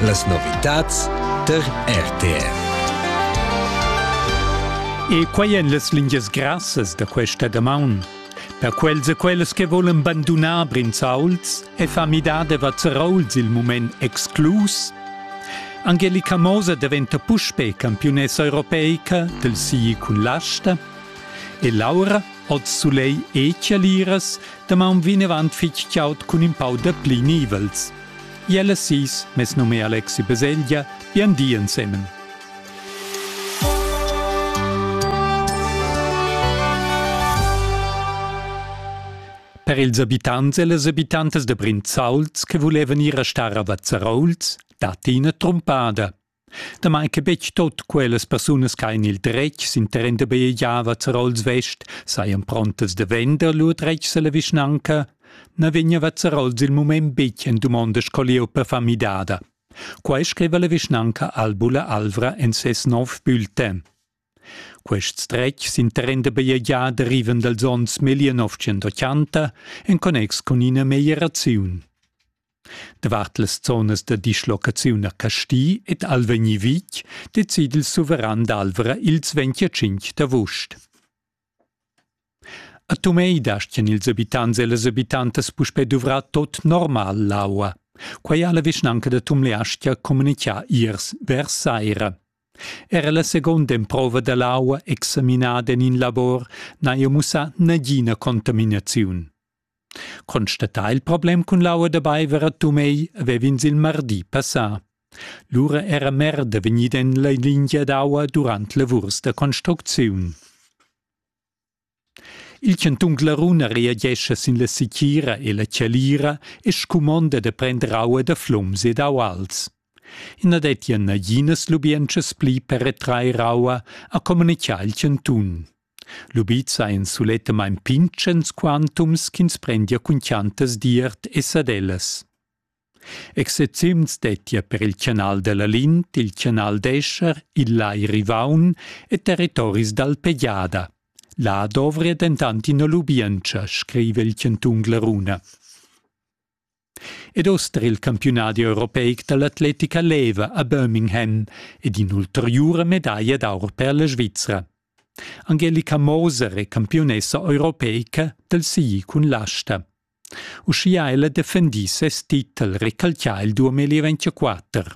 Las novitads tar RTR. E quai èn las lingias grassas da questa damaun. Per quels e quellas che volan bandunar Brinzauls e fa midar de Vazzerauls il moment exclus, Angelica Moser diventa puspe campiunessa europeica del sii cun l'asta e Laura, oz Soleil e Chialiras, Damaun vinavant fitg chaud cun in pau da pli nivels. Iella sis, mes num è Alexi Baselgia, bien di ensemen. Per ils abitants e las abitantas de Brinzauls che volevan ir a star a Vazzarouls, dat ina trumpada. Damai che betg tut quellas persunas che han il dretg sin terren da bajegiava Zerols West sajan prontas da vender lur dretgs alla vischnanca, na vegniva Zerols il mument betg en dumonda sco lieu per far midada. Quai scriva la vischnanca Albula Alvra en ses nov bulletin. Quests dretgs interenda bajegià derivan dals onns 1980 en connex cun ina meglieraziun. Davart las zonas da dislocaziun a Casti ed Alvegni Vic decide il suveran d'Alvra ils 25 d'avust. A Tumei dastgan ils abitants e las abitantas puspè duvrar tot normal l'aua. Quai ha la vischnanca da Tumleastga communitgà iers vers saira. Era la seconda emprova da l'aua examinada en in labor n'ha jau mussà nagina contaminaziun. Constatà il problem cun l'aua da baiver a Tumegl vev'ins il mardi passà. Lura era merda vegnida en la lingia d'aua durant lavurs da construcziun. Il chantun Glaruna reagescha sin la sichira e la chalira e scumonda da prender aua da flums e d'auals. I na dettia naginas lubientschas pli per retrair aua, ha communitgà il chantun. Lubizza ein sulettamain pintgens quantums ch'ins prendia cun chiantas d'iert e sadellas. Excepziuns dettia per il canal dalla Lint, il canal d'Escher, il Lai Rivaun e territoris d'Alpegiada. Là dovria dentant ina lubientscha, scriva il chantun Glaruna. Ed oster il campiunadi europeic dall'atletica leva a Birmingham ed in'ulteriura medaglia d'aur per la Svizra. Angelica Moser è campiunessa europeica del SI cun l'asta. Uschia ella defendì ses titel recalcià il 2024.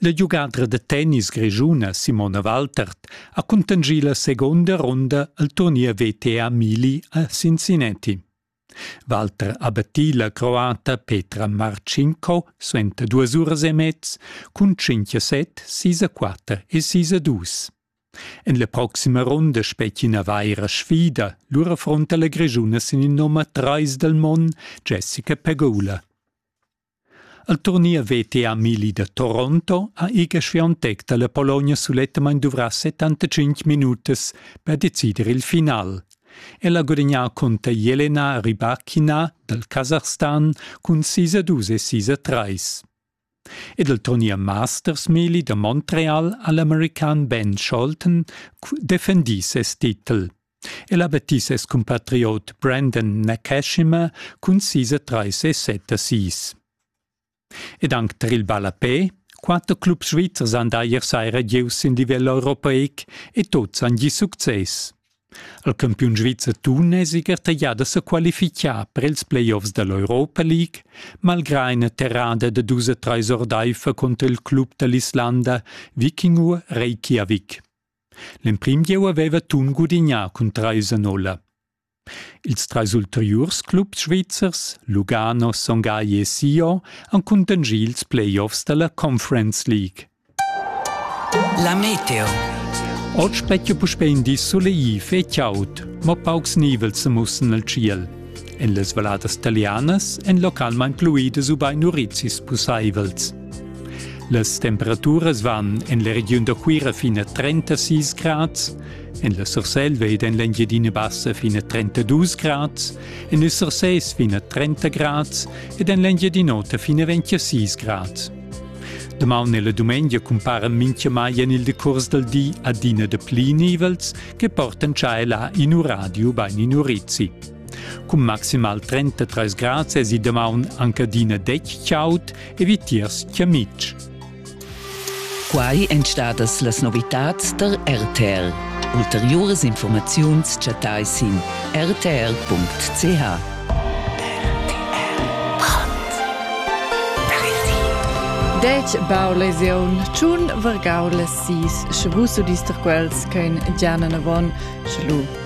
La giugadra da tennis grischuna Simona Waltert ha cuntanschì la segunda runda al turnier VTA Mili a Cincinnati. Walter ha battì la croata Petra Marcinko suenter duas uras e mez cun 5 a 7, 6 a 4 e 6 a 2. En la proxima runda spetgi ina vaira sfida, lura affronta la Grischuna sin il nummer 3 dal mon Jessica Pegula. El turnier veta Amili da Toronto ha Iga Swiatek dalla Pologna sulettamain duvrà 75 minutas per decider il final. El ha gudagnà cunter Jelena Rybakina dal Kasachstan cun 6 a 2 e 6 a 3. Ed il turnier Masters Melee da Montreal ha l'american Ben Scholten defendì ses titel. El ha battì ses cumpatriot Brandon Nakashima cun sis e trais e set assis. Ed anc tar il ballapè, quatter clubs svizzers han da ier saira gieus sin livel europeic e tuts han gì success. Il campiun svizzer tuneziger taglià da sa qualifichar per ils playoffs da l'Europa League, malgrà ina terrada da dus e trais ordaifer conter il club da l'Islanda Vikingur Reykjavik. L'emprim gieu haveva Thun gudignà cun trais a nolla. Ils trais ulteriurs clubs svizzers, Lugano, Son Gagli e Sion, han cuntanschì ils playoffs dalla Conference League. La meteo. Oggi specchia puspè in di solegliv e chaud, ma paucs nivels sa mussen al tschiel. En las valladas talianas èn localmain fluidas ubain urizis pussaivels. Las temperaturas van en la regiun da Cuira fin a 36 grads, en la Surselva ed en l'Engiadina Bassa fin a 32 grads, en il Surses fin a 30 grads ed en l'Engiadin'Ota fin a 26 grads. Damaun e la dumengia cumpara mintgamai en il decurs dal di adina da pli nivels che portan tschai là in uradio bain in urizi. Cun maximal 33 grads esi damaun anc adina detg chaud e vitiers chiamitg. Quai èn stadas las novitads tar RTL. Ulteriuras informaziuns chattai sin rtl.ch. Dec bau lesiun, tschun vargau las sis, sche vus udister quels ch'ein già nanavon, schlu.